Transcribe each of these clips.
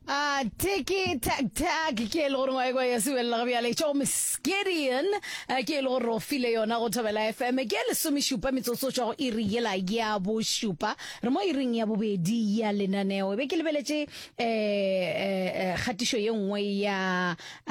Ah, tiki tak tak ke e le gore ngwae kwa ya sewelela ga bjale tšo misgideon eh, ke e le gore o file yona go thobela fm ke lesomešupa metsotso tšwa go iri yela ya bošupa re mo iring ya bobedi ya lenaneo e be ke lebeletše um kgatišo ye nngwe ya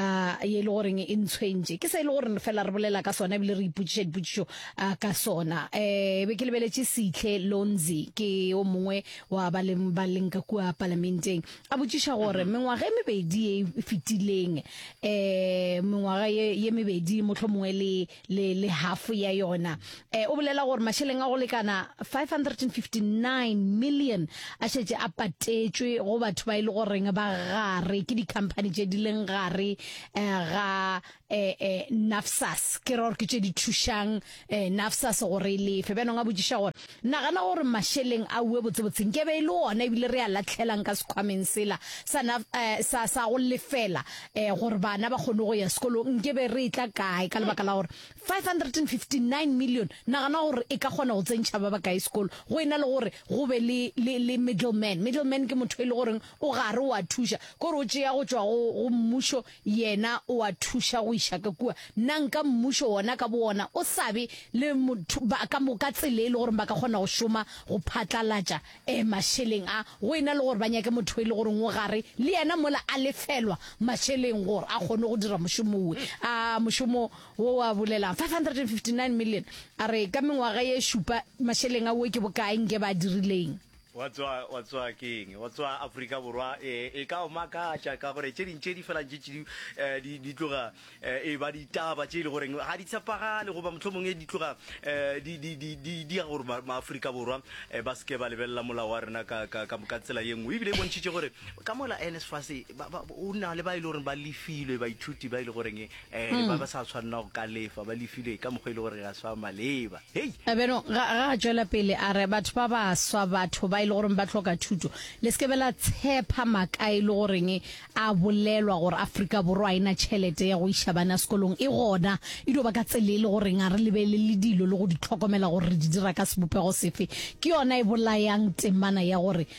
ah, ye e le goreng e ntshwentše ke se e le gore fela re bolela ka sona ebile re ipotšiša dipotšišo ah, ka sona um e be ke lebeletše setlhe lonzi ke o mongwe wa ba le ba leng ka kua palamenteng a botšiša gore mhm. mengwaga e mebedi e fetileng um mengwaga ye mebedi motlho mongwe le hafo ya yona um o bolela gore mašeleng a go lekana 559 million a šetse a patetšwe go batho ba e le goreng ba gare ke di-company tše di leng gare um ga eh, eh, nafsas ke ra gore ke tše di thušang eh, nafsas gore e lefe bjanong a botšiša gore nagana gore mašeleng a ue botsebotseng ke be e le ona ebile re a latlhelang ka sekgwameng sela sa, eh, sa, sa go lefela eh, gore bana ba kgone go ya sekolong nke be re e tla kae ka lebaka la gore 559 million nagana gore e ka kgona go tsentšha ba ba kae sekolo go e na le gore go be le, le, le middleman middleman ke motho e le goreng o gare o a thuša kore o tšea go tšwa go mmušo Yena o a thuša go iša ka kua. Na nka Mmušo wona ka bowona o sa be le motho, ba, ka moka tsela e le gore ba ka kgona go šoma go phatlalatša eh, mašeleng a, go e na le gore ba nyake motho e le goreng o gare le yena mola a lefelwa mašeleng gore a kgone go dira mošomo wo? A mošomo wo wa bolelang? 559 million. A re, ka mengwaga ye šupa, mašeleng a wo ke bokae nke ba dirileng? Wa tswa, wa tswa keng? Wa tswa Afrika Borwa. E, e ka o makatša ka gore tše ding tše di felang tše tšedi eh, di, di tloga eh, e ba ditaba tše e le goreng ga di tshepagale goba mohlho mongwe di tloga eh, di, di, di, di, di ya gore ma- maafrika borwa eh, ba seke ba lebelela molao wa rena ka, ka, ka, ka tsela ye nngwe ebile e bontšhitše gore ka mola nsfas ba, ba, o na le ba e le goreng ba lefilwe baithuti ba e le goreng Eh, le ba ba sa tshwanela go ka lefa ba lefilwe ka mokgwa e le gore ga se wa maleba hei A beno ga ga a tšwela pele a re batho ba ba swa batho ba e le goreng ba tlhoka thuto le se ke be la tshepa maka e le goreng a bolelwa gore aforika borwa a ena tšhelete ya go iša bana sekolong e gona e dio ba ka tsele e le goreng a re lebelele dilo le go di tlhokomela gore re di dira ka sebopego sefe ke yona e bolayang temana ya gore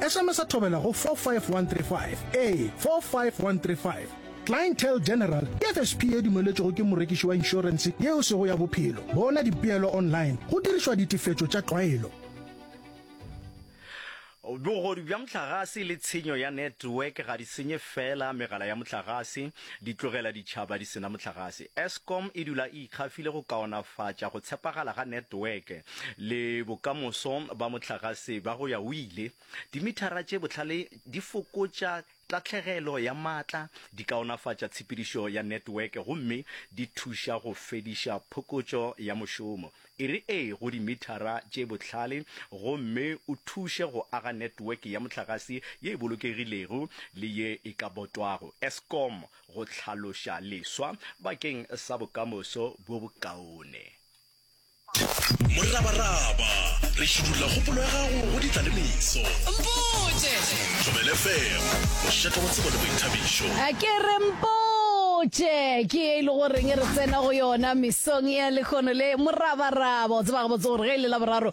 Sms-a thobela go 45135, ee, 45135. Clientele General ke FSP ye dumeletšwego ke morekiši wa inšorense yeo sego ya bophelo. Bona dipeelo online go dirišwa ditefetšo tša tlwaelo. Bogodu bja mohlagase le tshenyo ya network ga di senye feela megala ya mohlagase, di tlogela ditšhaba di sena mohlagase. Eskom e dula e ikgafile go kaonafatša go tshepagala ga network. le bokamoso ba mohlagase ba go ya o ile. Dimithara tše bohlale di fokotša tahlegelo ya maatla, di kaonafatša tshepedišo ya netweke gomme di thuša go fediša phokotšo ya mošomo. E re ee go dimithara tše bohlale gomme o thuše go aga netweke ya mohlagase ye e bolokegilego le ye e ka botwago, Eskom go hlaloša leswa bakeng sa bokamoso bo bokaone. Morabaraba, re šidulla kgopolo ya gago go ditla le meso. Mpotše! Thobela FM, mošetho wa tsebo le boithabišo. A ke re mpotše! Ke ye e le goreng re tsena go yona mesong ya lekgono le morabaraba. O tseba gabotse gore ge e le Laboraro,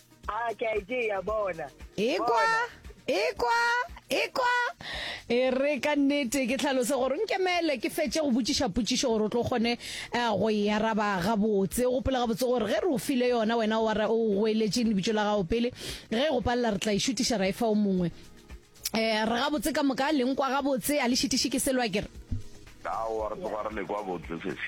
a ke a e tšea bona ekwa ekwa ekwa e re ka nnete ke tlhalose gore nkemele ke fetse go botšiša potšišo gore o tlo kgone um go e araba gabotse o gopola gabotse gore ge re o file yona wena o goeletseng lebitso la gago pele ge e go palela re tla e šutiša ra e fa o mongwe um re gabotse ka moka leng kwa gabotse a le šitiše ke selwa kere aowa re tloga re le kwa botse sese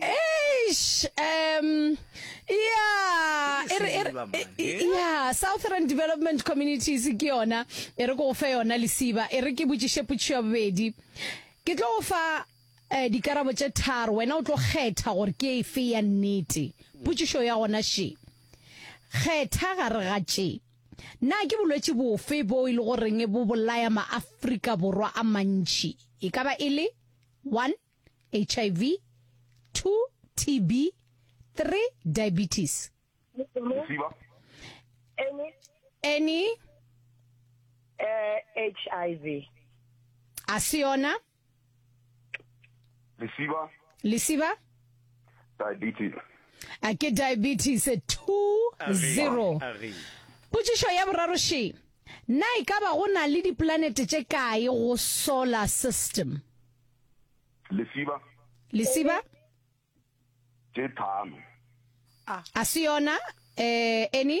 Eish, um, yeah, Ke e re- e re- lesiba, man. e- e- yeah, Southern Development Communities ke yona, e re ko go fe yona lesiba, e re ke botšiše potšišo ya bobedi. Ke tlo go fa eh, dikarabo tše tharo, wena o tlo kgetha gore ke efe ya nnete. Potšišo ya gona še. Kgetha gare ga tše. Na ke bolwetši bofe bo e le goreng bo bolaya maafrika borwa a mantši? E ka ba e le 1 hiv 2 tb 3 diabetes Mosiba. Any any uh, hiv a se yona lesiba lesiba diabetes a ke diabetes 20 potšišo ya boraro she na e ka ba go na le diplanete tše kae go solar system lesiba lesiba tše tharo a se yona um eni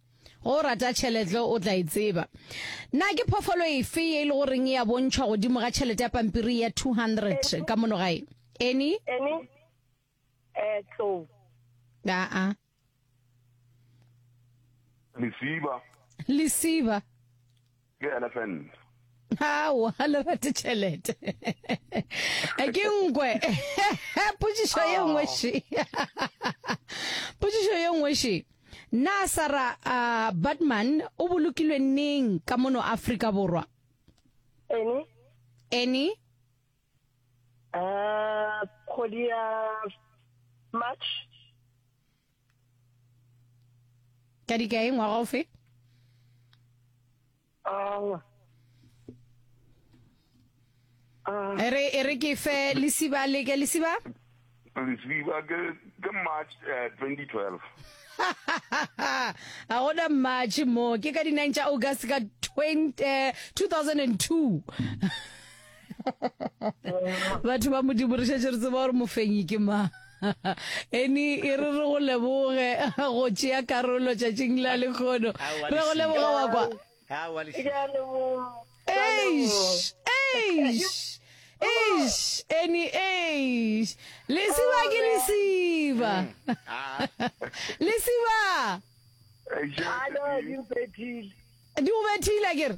Ge o rata tšhelete o tla e tseba. Na ke phoofolo efe ye e le goreng e a bontšhwa godimo ga tšhelete ya pampiri ya 200 ka mono gae? Eni? Eni? Eh, tlou. Aa. Lesiba. Lesiba. Ke elephant. Aowa, ha le rate tšhelete. Ke nkwe. Potsišo ye nngwe še. Potsišo ye nngwe še. Na Sarah uh, Batman o bolokilwe neng ka mono Afrika Borwa? Eni. Eni. Uh, kgwedi ya March. ka dikae ngwaga o fe e re e re ke fe lesiba le ke lesiba lesiba ke ke march uh, eh, 2012 a gona march mo ke ka di-9 tša august ka 20, uh, 2002 batho ba modimo re šetse re tseba gore mofenyi ke mang eni e re re go leboge go tšea karolo tšatšing la lekgono re go leboga wa kwa eish eish eish eni eish lesiba ke lesiba lesiba di go bethile ke re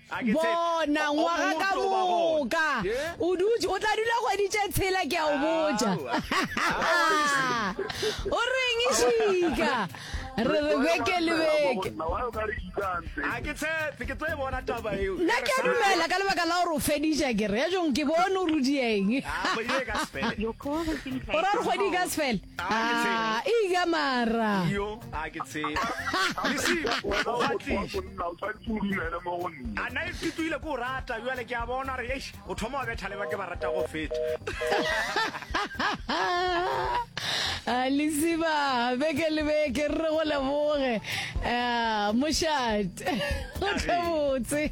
Bona, ngwaga ka moka. O dutše, o tla dula kgwedi tše tshela, ke a o botša. O reng e šika? Re re beke le beke. Nna ke a dumela ka lebaka la gore o fediša ke re ya jong ke bone o rudieng. O ra re kgwedi ka sefele. Ah, eya mara. Iyo, a ke tseba. Lesima, o a tliša. A na e fetoile ko rata, bjale ke a bona re, eish, o thoma wa betha le ba ke ba rata go feta. Ah, Lesiba, beke le beke, re re go leboge. Ah, mošate. Go tle botse.